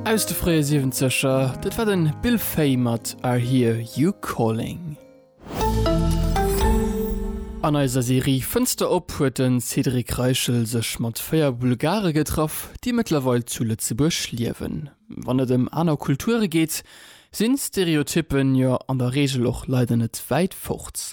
Aus de fréie Siwenzeger, dat war den Bill Fay mat I Hear You Calling. An eiser Serie Fënster op huet den Cédric Reichel sech mat 4 Bulgare getraff, déi mëttlerweil zu Lëtzebuerg liewen. Wann et ëm aner Kulture geet, sinn Stereotyppen jo an der Regel och leider net wäit fort.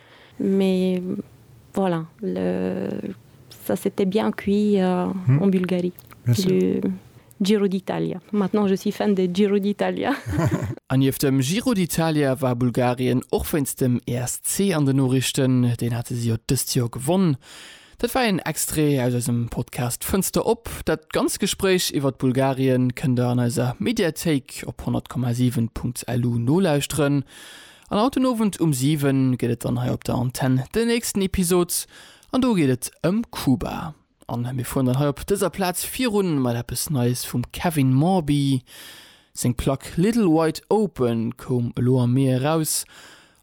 Mais voilà, le, ça s'était bien cuit en Bulgarie, le Giro d'Italia. Maintenant je suis fan de Giro d'Italia. A nieft dem Giro d'Italia war Bulgarien och wéinst dem ESC an den Noriichten, deen hate si jo dëst Joer gewonn. Dat war een Extrait aus eisem Podcast Fënster op. Dat ganz Gespréich iwwert Bulgarien kënnt der an eiser Mediathéik op 100,7.lu nolauschteren. An haut den Owend um 7 gëtt et dann hei op der Antenn den nächsten Episod an do geet et ëm Kuba. An mir fueren dann hei op dëser Plaz virun mat eppes Neies vum Kevin Morby. Seng Plack Little Wide Open koum elo am Mee eraus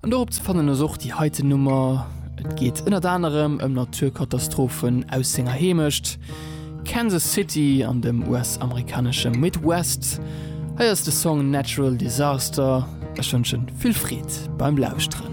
an dorop ze fannen ass och déi heiten Nummer. Et geet ënnert anerem ëm Naturkatastrophen aus senger Heemecht. Kansas City an dem US-amerikanesche Midwest. Hei ass de Song Natural Disaster. Ech wënschen vill Freed beim Lauschteren.